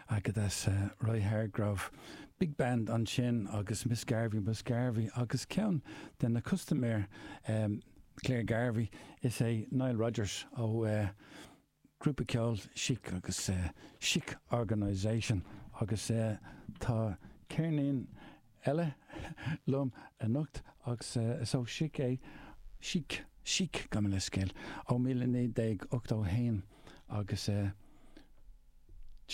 Agadez Roy Hargrove, Big Band ansin agus Miss Garvey Miss Garvey agus ceann de na custaiméir, clár Garvey is é Nile Rodgers ó ghrúpa ceoil Chic agus Chic Organisation agus tá ceirnín eile liom anocht agus is ó Chic é, Chic, Chic, gabh mo leithscéal, ó mhíle naoi gcéad ochtó a haon agus é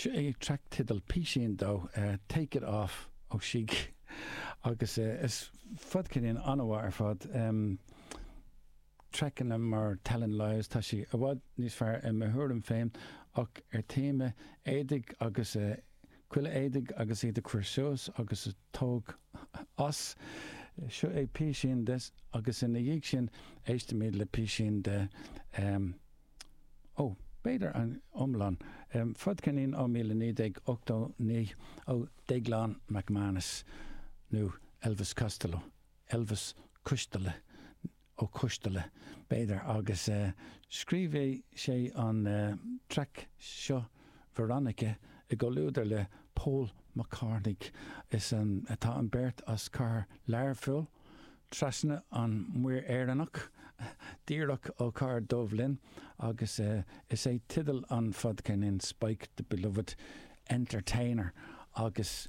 an track teidil, písín de Take it off ó Chic agus is fadcheirnín an-mhaith ar fad. Trackanna mar Telling Lies, tá sé i bhfad níos fearr i mo thuairim féin ach ar téama éadaigh agus chuile éadach agus iad a chur suas agus a tóg as, seo é písín de agus ina dhiaidh sin éistimid le písín de em ó b'fhéidir an iomlán, em fadcheirnín ó míle naoi déag ochtó naoi ó Déaglán MacManus nó Elvis Costello, Elvis Coisteala, Ó Coistealla, b'fhéidir, agus scríobh sé an traic seo 'Veronica' i gcomhluadar le Pól Mac Cartaine. Tá an beirt as cathair Learphoill, trasna an Muir Éireannach, díreach ó cathair Dubhlinn, agus is é teideal an fhadcheirnín Spike the Beloved Entertainer, agus.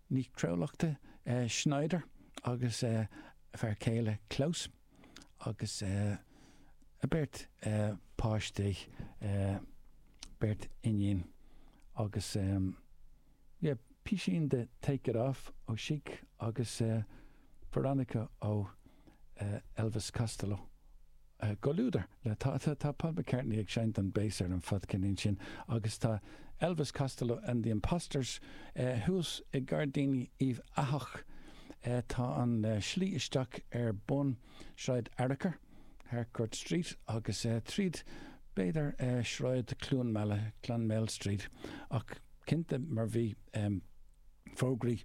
Nicole Nic Lochlainn Schneider agus a fear céile Klaus agus a beirt páistí, beirt iníon agus písín de Take It Off ó Chic agus Veronica ó. Elvis Costello i gcomhluadar le. Tá Paul McCartney ag seinnt an bass ar an fadcheirnín sin agus tá Elvis Costello and the Imposters thuas i Gairdíní Uíbh Eathach. Tá an slí isteach ar bun Sráid Fhearchair, Harcourt Street, agus tríd b'fhéidir Sráid Chluainmeala, Clonmel Street, ach cinnte mar bhí. fógraí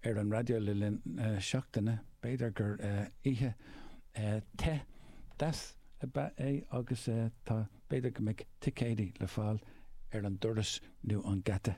ar an raidió le linn na seachtaine. B'fhéidir gur oíche te, deas ab ea é agus tá. B'fhéidir go mbeidh ticéidí le fáil ar an doras nó an geata.